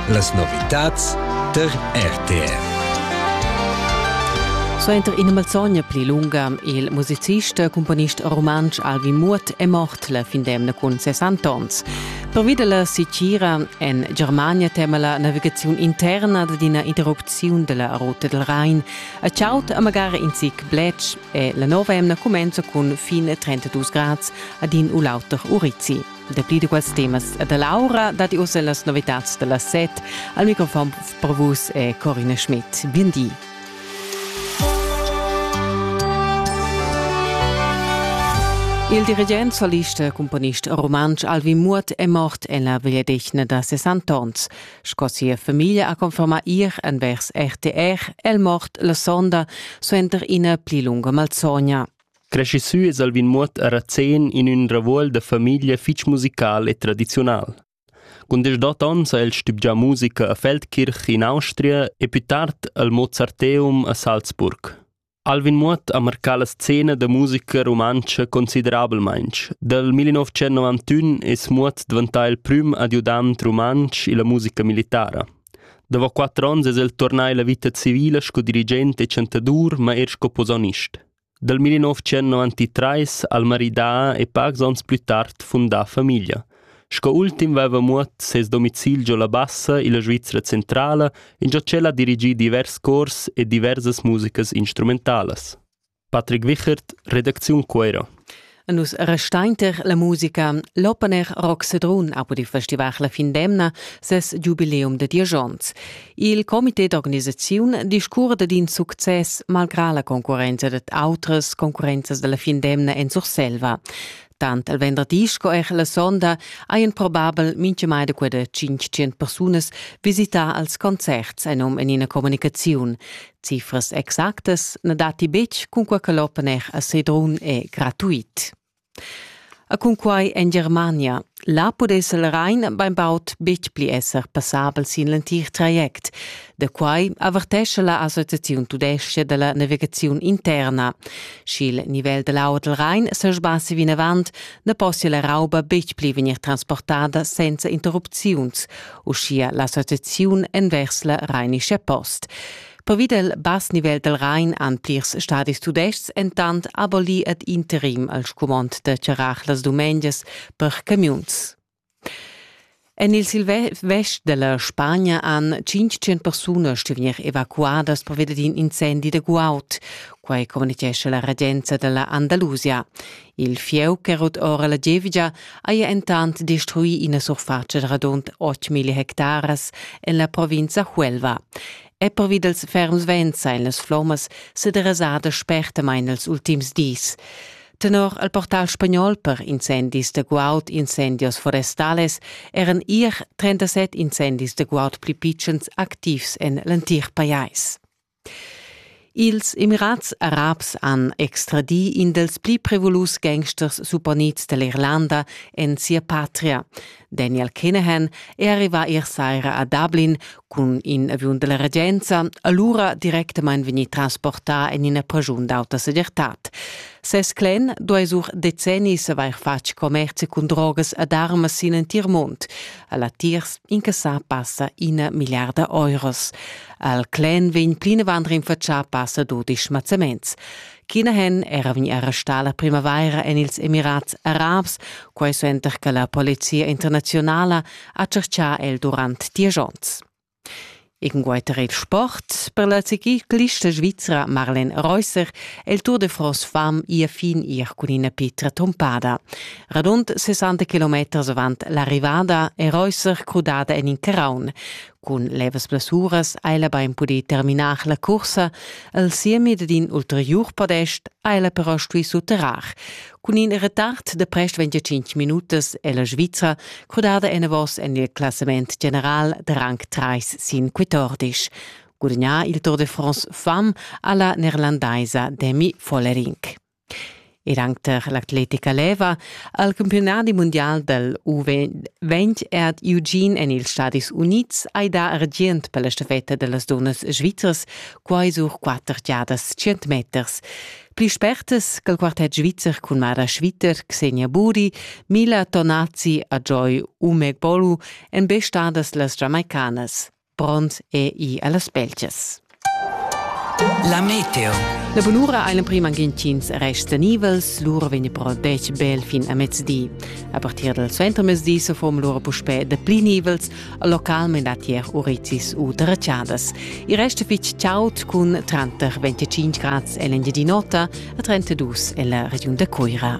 Las novitads tar RTR. Suenter ina malzogna pli lunga il musicist e cumponist rumantsch Alvin Muot è mort la fin d'emna cun 60 onns. Pervi dalla sitgira en Germania tema la navigaziun interna ad ina interrupziun della ruta del Rhein a ciaut a magari in zic blech e la nova emna cumenza cun fin 32 grads ad in u l'auter Urizzi. Dapli da quels temas e da l'aura datti ussa las novitads da la set. Al microfon per vus è Corina Schmidt. Bien di. Il dirigent, solist e cumponist rumantsch Alvin Muot è mort en la vegliadetgna da 60 onns. Sco sia famiglia ha confermà ir envers RTR, è el mort la sonda suenter ina pli lunga malsogna. Creschi sü es Alvin Muoth a Razén in ün ravuol da famiglia fich musical e tradiziunal. Cun deschdot ons ha el stübgià musica a Feldkirch in Austria e pü tard al Mozarteum a Salzburg. Alvin Muoth ha marcà la scena da musica rumantscha considerabelmaing. Dal 1991 es Muoth dvantà il prüm adiudant rumantsch illa musica militara. Dopo quattro onns es el tornà illa vita civila sco dirigent e chantadur, ma eir sco posaunist. Dal 1993 ha'l maridà e pacs ons plü tard fundà famiglia. Sco ultim vaiva muot ses domicil giò la Bassa illa Svizra Centrala ingio ch'el ha dirigì divers cors e diversas musicas instrumentalas. Patrick Wichert, redacziun Cuera. Nus restainter la musica. L'opener Rock Sedrun ha pudì festivar la fin d'emna ses giubileum da diesch onns. Il comité d'organisaziun discurda d'in success malgrà la concurrenza dad autras concurrenzas da la fin d'emna en Surselva. Tant il venderdi sco er la sonda hajan probabel mintgamai da quella 500 persunas visità als concerts, ein um en ina communicaziun. Cifras exactas na datti betg cunquai che l'open-air a Sedrun è gratuit. A cunquai en Germania. Là pudess il Rhein bainbaud betg pli esser passabel sin l'entir traject. Da quai avertescha la Associaziun tudestga da la navigaziun interna. Sch'il nivel da l'aua dal Rhein se sbassi vinavant, na possia la rauba betg pli vegnir transportada senza interrupziuns, uschia la setaziun envers la Rheinische Post. Pervi del bass nivel del Rhein han plirs stadis tudestgs entant abolì ad interim al scumond da charrar las dumengias per camiuns. En il silvest della Spagna han 500 persunas stuvier evacuadas pervia d'in incendi de guaud. Quai communicesce la regenza della Andalusia. Il fieu che rut ora la gievgia haja entant destruì ina surfatscha da radund 8.000 hectaras en la provinza Huelva. E pervi dals ferms vents ein las flommas sederasadas spertamain els ultims dis. Tenor al portal spagnol per incendis de guaud, incendios forestales eran ier 37 incendis de guaud pli pitschens activs en l'entir pajais. Ils Emirats Arabs han extradì in dals pli prevolus gangsters supponids da l'Irlanda en sia patria. Daniel Kinahan è arrivà ier saira a Dublin cun in aviun della regenza, allura directamain vegnì transportà en ina pragiun d'auta segirtad. Ses clan duai sur decennis avair fatg commerzi cun drogas ed armas sin entir mund. A latiers incassà passa ina milliarda euros. Al clen vegn plinavant rinfatschà passa dudisch mazzaments. China hen era vegni arrestà la primavaira en ils Emirats Arabs, quai suenter che la polizia internaziunala ha tschertgà el durant diesch onns. Ingueiter il sport per la ciclista svizra Marlen Reusser è il Tour de France fam ia fin ir cun ina pitra tompada. Radund 60 km avant l'arrivada è Reusser crudada en in caraun. Cun levas blessuras ha ella bain pudì terminar la cursa. El siemi dad in ulteriur podest ha ella però stuì sutterrar. Cun in retard de prest 25 minutas è la Svizra crudada enavos en il classament general de rang 3 sin 14. Gudagnà il Tour de France femme alla neerlandaisa Demi Follerink. Er anc tar l'atletica leva ha il campiunadi mundial dal U20 ed Eugene en ils Stadis Unids hai dà argient per la stafetta da las dunnas svizras, quai sur quatter giadas tschient meters. Pli spertas che il quartet svizzer cun Mara Schwitter, Xenia Buri, Mila Tonazzi e Joy Umegbolu èn be stadas las Giamaicanas. Pront è i a las Belgias. La meteo. La bunura ei l'emprim anghintschins rests tenivels, lura vegn però detg bel fin a mezdi. A partir dal suentermezdi se form lura puspè dapli nivels, localment a tier urizis u terracciadas. Il rest fitg chaud cun tranter 25 grads en l'Engiadin'Ota a 32 en la regiun da Cuira.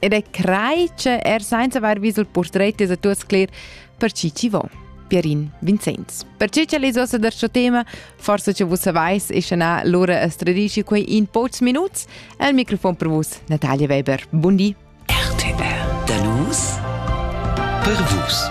Ed è crai che er senza aver vis il portret es a tu scler per chi ci vo. Pierin Vincenz. Per ciò che les ossa da sto tema, forse che vus savais, e na Lora es tradisci quei in pocs minuts, al microfon per vus Natalia Weber. Bundi! RTR. Da nus per vus.